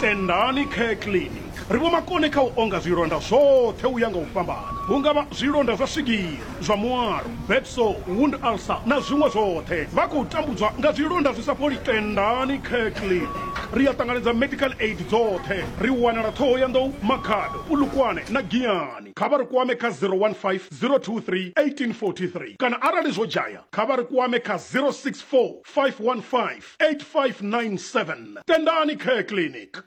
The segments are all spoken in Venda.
Tendani Care Clinic ri vho makone kha u onga zwilonda zwoṱhe u ya nga u fhambana, hu nga vha zwilonda zwa swigiri, zwa mualo, bed sore, wound ulcer na zwiṅwe zwoṱhe. Vha khou tambudzwa nga zwilonda zwi sa fholi? Tendani Care Clinic ri a ṱanganedza medical aid dzoṱhe. Ri wanala Ṱhohoyanḓou, Makhado, Polokwane na Giyani. Kha vha ri kwame kha 015 023 1843 kana arali zwo dzhaya kha vha ri kwame kha 064 515 8597 tendani care clinic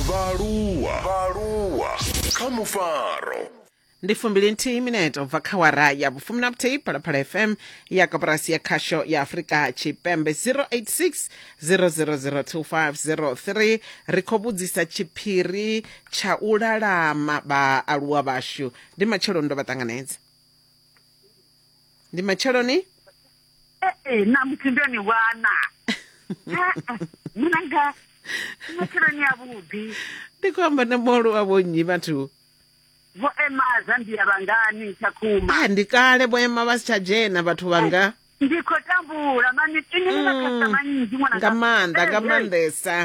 vhaaluwa vhaaluwa kha mufaro ndi fumbili nthihi mineto bva kha wara ya vhufumi na vhuthihi phalaphala fm ya koporasi ya khasho ya afurika tshipembe 086 000250 ri khou vhudzisa tshiphiri tsha u lalama vhaaluwa vhashu ndi matsheloni ndo vha ṱanganedza ndi matsheloni ee ṋamusi ndo ni wana munanga matsheloni avhuḓi ndi khou amba na molo wa vhonnyi vhathu vho ema zambia vhangani tshakhuma a ndi kale vho ema vha si tsha dzhena vhathu vhanga ndi khou tambula mani ini ni makhasa mm. manzhi nga maanḓa nga maanḓesa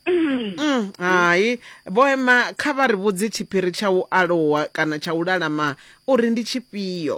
mm. mm, hai vho ema kha vha ri vhudzi tshiphiri tsha u alowa kana tsha u lalama uri ndi tshifhio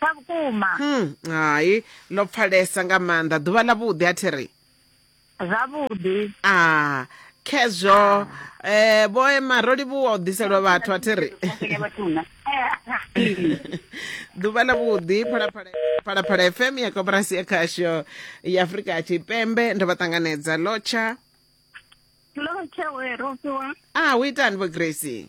sa vhukuma hmm, hai ḽo pfalesa nga maanḓa ḓuvha ḽa vhuḓi a thi ri zwavhuḓi a ah, khezwo um eh, vho ema ro livhuwa u ḓiselwa vhathu a thi ri ḓuvha ḽa vhuḓi phalaphala fm ya koporasi ya khasho ya afurika tshipembe ndo vha ṱanganedza lotsha lotsha we rofiwa a ah, u itani vho gracie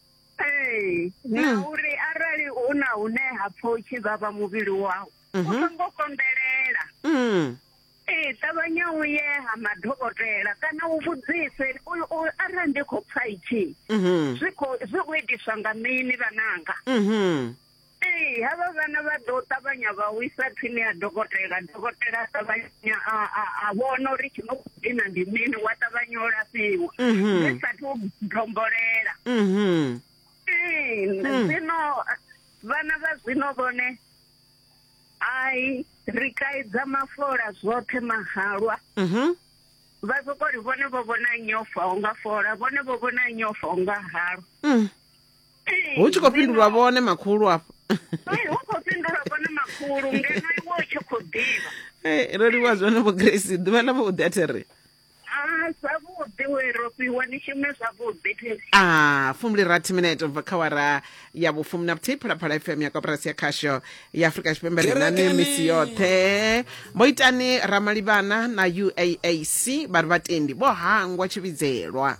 ee na mm. uri arali hu na hune ha pfa u tshi vhavha muvhili wau u mhm. songo konḓelela mm. ee ṱavhanya u ye ha madokotela kana u vhudzise arali ndi khou pfa itshi mhm. zwi khou itiswa nga mini vhananga mhm. Ee, havha vhana vha ḓo ṱavhanya vha u isa thwini ya dokotela dokotela a ṱavhanya a vhona uri tshi no khou dina ndi mini wa ṱavhanya u lafhiwa mhm. zwi sathu dombolela mhm. ee hmm. zwino vhana vha zwino vhone ai ri kaidza mafola zwoṱhe mahalwa mhm. vha soko ri vhone vho vhona nyofa unga fola vhone vho vhona nyofa unga halwa hmm. hu tshi khou fhindulwa vhone makhulu afho hu khou fhindulwa vhone makhulu ngeno iwe u tshi khou ḓivha ro livhuwa zwone vho grace ḓuvha ḽa vhuḓi a thi ri zwavhuḓi we ro fhiwa ni shume zwavhuḓi a ah, fumuli rathi minete ubva kha wara ya vhufumi na vhuthihi phalaphala fm ya koporasi ya khasho ya afurika tshipembe rinani misi yoṱhe vho itani ramalivhana na uaac vha ri vhatendi vho hangwa tshivhidzelwa